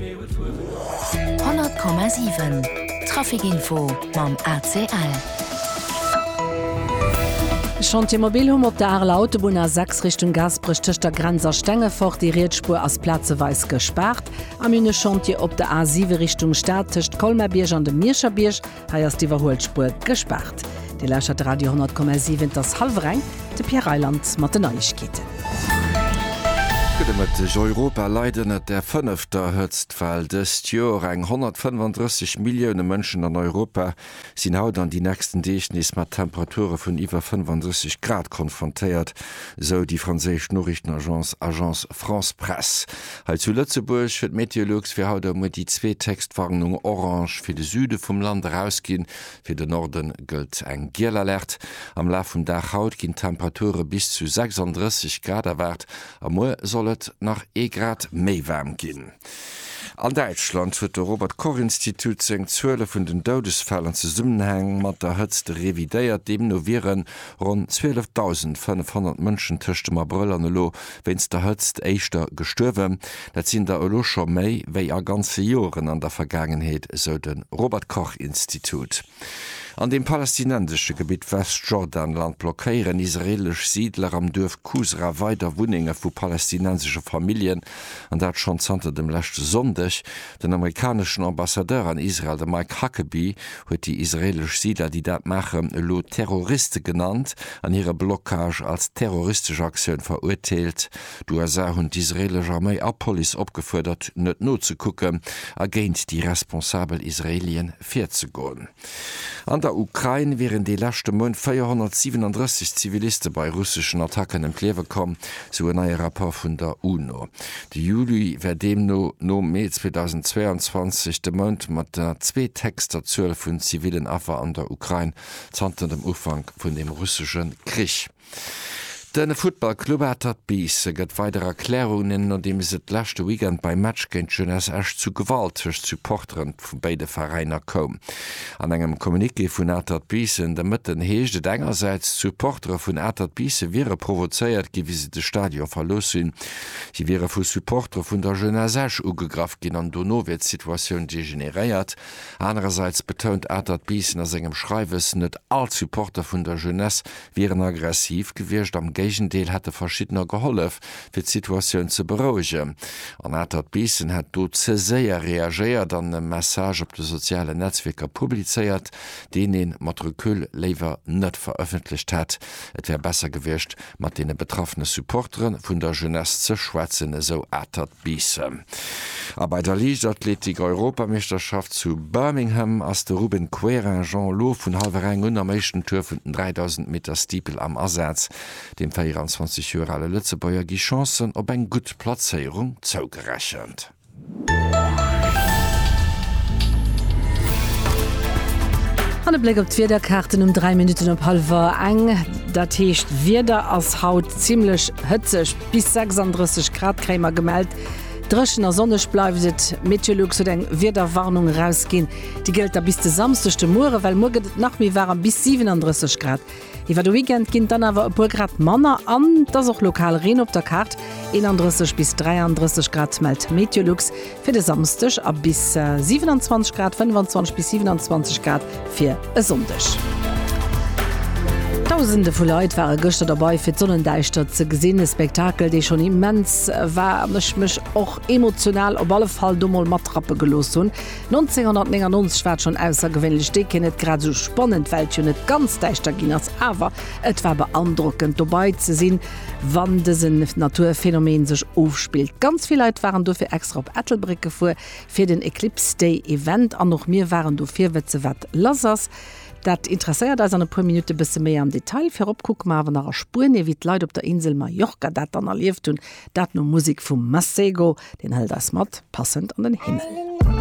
100,7 Traficinfo mam ACL. Chantier mobil hunn op der Areler Autobunn A6 Richtung Gaasperech tëscht der Grenz a Stengefort déi Rietsspuer ass plazeweis gespaart. A mir hunn e Chantier op der A7 Richtung Stad tëscht Colmar-Bierg an dem Mierscher Bierg. Hei ass d'Iwwerhuelspuer gespaart. Dir lauschert Radio 10,7. Et ass hallwer eng. De Pierre Reyland mat den Neiegkeeten. Gudde Mëtteg. Europa leit ënnert der fënnefter Hëtztwell dëst Joer. Eng 135 Millioune Mënschen an Europa sinn haut an déi nächsten Deeg nees mat Temperature vun iwwer 35 Grad konfrontéiert, esou déi franséisch Noriichtenagence Agence France-Presse. Hei zu Lëtzebuerg huet Meteolux fir haut a muer déi zweet héchst Warnung orange fir de Süde vum Land erausginn. Fir de Norde gëllt eng giel Alerte. Am Laf vum Dag haut ginn Temperature bis zu 36 Grad erwaart a muer soll et nach ee Grad méi waarm ginn. An Däitschland huet de Robert Koch Institut seng Zuele vun den Doudesfäll an Zesummenhang mat der Hëtzt revidéiert. Deemno wieren ronn 12.500 Mënschen tëscht dem Abrëll an elo wéinst der Hëtzt éischter gestuerwen. Dat sinn der elo scho méi wéi a ganze Joren an der Vergaangenheet, esou de Robert Koch Institut. An deem palästinensesche Gebitt Westjordanland blockéieren israeelesch Siidler am Duerf Kusra weider Wunnenge vu palästinensesche Familljen, an dat schonn zanter dem leschte Sonndeg. Den amerikaneschen Ambassadeur an Israel, de Mike Huckabee, huet déi israeelesch Siidler, déi dat maachen, elo Terroriste genannt an hire Blockage als terroristesch Aktioun verurteelt. D'USA hunn d'israeelesch Arméi a Police opgefuerdert, net nozekucken a géint déi responsabel Israeelie virzegoen. An der Ukrain wieren de leschte Mount 437 Ziviliste bei russeschen Attacken ëm d'Liewe komm, sou en neie Rapport vun der UNO. De Juli wär deemno no Mee 2022 de Mount mat der zweethéchster Zuel vun zivillen Affer an der Ukrain zanter dem Ufank vun dem russesche Krich. De Futtballclub Atert Biisse gëtt weider Erklärungen, nodeems et leschte Weekend beim Match géint d'Jeunesse Esch zu Gewalt tëscht Supportere vu béide Veräiner koum. An engem Communiqué vun Atert Biissen de Mëtten heescht et engersäits, d'Supportere vun Atert Biisse wiere provozéiert ginn, wéi se de Stadion verlooss hunn. Si wiere vu Supportere vun der Jeunesse Esch ugegraff ginn an dono wier d'Situatioun degeneréiert. Anerersäits betount Atert Biissen a sengem Schreiwes, net all d'Supporter vun der Jeunesse wier en aggressiv gewiescht, am Géigendeel hätte verschiddener gehollef, fir d'Situatioun ze berouegen. En Atert Biissen hätt do ze séier reagéiert an e Message op de sozialen Netzwierker publizéiert, deen ee mat Recul léiwer net verëffentlecht hätt. Et wär besser gewiescht, mat deene betraffene Supportere vun der Jeunesse ze schwätzen, esou Atert. Bissen. A bei der Liichtathletik-Europameeschterschaft zu Birmingham ass de Ruben Querinjean elo vun hallwer eng un am éischten Tour vun den 3000 Meter Steeple am Asaz. Dem 24 Joer ale Lëtzebuerger gi Chancen op eng gutt Plazéierung zougerechent. An e Bléck op d'Wiederkaarten um 3 Minutten op hallwer eng. Dat heescht, Wieder ass haut zimmlech hëtzeg. Bis 36 Grad kréie mer gemellt. Dréchen a sonneg bleift et. Meteolux huet eng Wiederwarnung erausginn. Déi gëllt da bis de Samsdeg de Muere, well muer gëtt et nach méi waarem, bis 37 Grad. Iwwer de Weekend ginn et dann awer e puer Grad manner an et ass och lokal Reen op der Kaart. 31 bis 33 Grad mellt Meteolux. Fir de Samsdeg a bis 27 Grad, 25 bis 27 Grad fir e Sonndeg. Dausende vu Leit ware gëschter derbei fir d'Sonnendäischtert ze gesinn. E Spektakel, dee schonn immens war an ech mech och emotional op alle Fall do mol matrappe gelooss hunn. 1999 war et schonn aussergewéinlech déken, net grad esou spannend, well et jo net ganz däischter ginn ass, awer et war beandrockend dobei ze sinn. wann dësen Naturphänomen sech ofspillt. Ganz vill Leit waren dofir extra op Ettelbréck gefuer fir den Eclipse Day Event an och mir waren do fir wetzen wat lass ass. Dat interesséiert eis an e puer Minutte bësse méi am Detail. Virop kucke mer awer nach a Spuenie wéi d'Leit op der Insel Mallorca dat dann erlieft hunn. Dat no Musek vum Masego, deen hëlt eis mat passend an den Himmel.